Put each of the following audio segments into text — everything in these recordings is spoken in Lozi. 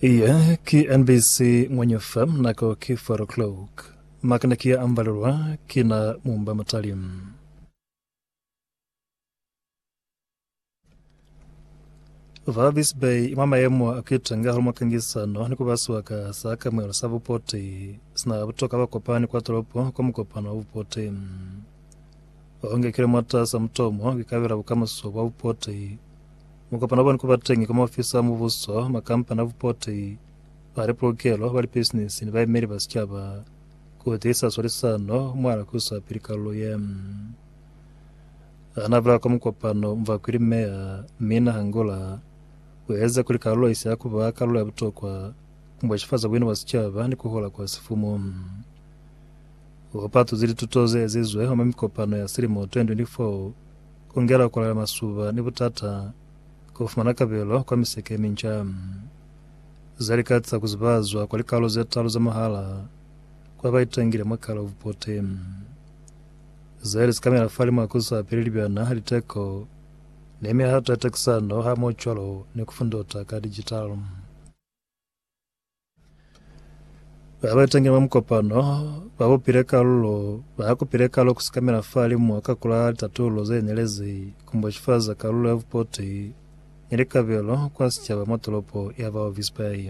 Iye ki NBC Ngwenye FM nako ki 4 o'clock. Makana ki ya ambalelwa ki na mumba mutali. Valvis Bay mwa mayemo a kuitenga hali mwakangisano ni kuba siwaka sa kamwelo sa bupoti sina butoka ba kopani kwa tolopo kwa mukopano wa bupoti ongekile mwatasa mutomo kikabela bukamuso bwa bupoti Mukopano wabani kuba teñi kwa maofisi a mubuso, makampani a bupoti, ba lipolokelo, ba lipisinisi ni baemeli ba sicaba ku tiisa swalisano mwa na kusa pili kalulo ye. Ha na bula kwa mukopano, Mvakwili Meya Minna Hangula u eza kuli kalulo isi ya kuba kalulo ya butokwa mwa shifaza buina bwa sicaba ni kuhola kwa sifumu. U patuzi lituto ze ezizwe mwa mikopano ya silimo 2024 Ku ngela ku lala masuba ni butata kwa ku fumana kabelo kwa miseke ye minca za lika za ku zibazwa kwa likalolo ze talu za mwahala kwa ba itangile mwa kala u pote ze li sikamela fa limu a ku sa peli libyana, liteko, ni mihato ya takisano hamoho cwalo ni ku fundota ka dijitalo. Ba ba tenge mwa mukopano ba bupile kalulo ba akupile kalo kusikamela fa limu ka kula litatulo ze nelezi kumboxifaza kalulo ya vupoti ni likabelo kwa sicaba mwa tolopo ya Walvis Bay.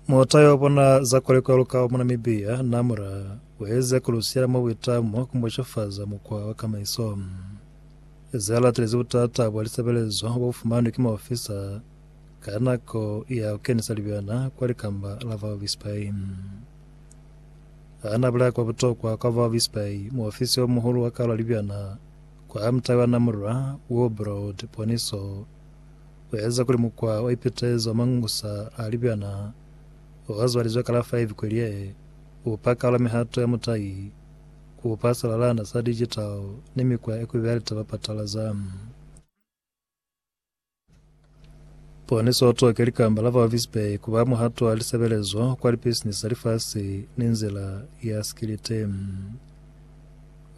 Mota yo bona za kolekwa lukao mu Namibia na mura weze kulusiyela mwa buitamo kumboshofaza mukwa wa kamaiso. Ze latelezi butata bwa lisebelezo bo fumanwe ki maofisa ka nako ya kukenisa libyana kwa likamba la Valvis Bay. Ana bulaya kwa butokwa kwa Valvis Bay, muofisi o muhulu wa kalo ya libyana kwa mutai wa Namura, Wilbrod Poniso Ku eza kuli mukwa o ipitezi wa mangusa a libyana o azwalizwe ka la 5 Kweliehe u pa kalo ya mihato ya mutai, ku upa silalana sa digital ni mikwa ye kubi ya litaba patalaza. Poniso o toke likamba la Walvis Bay ku ba muhato wa lisebelezo kwa lipisinisi za lifasi ni nzila ya sikiliti.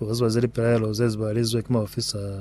U zwaze lipilaelo ze zibalizwe ki maofisa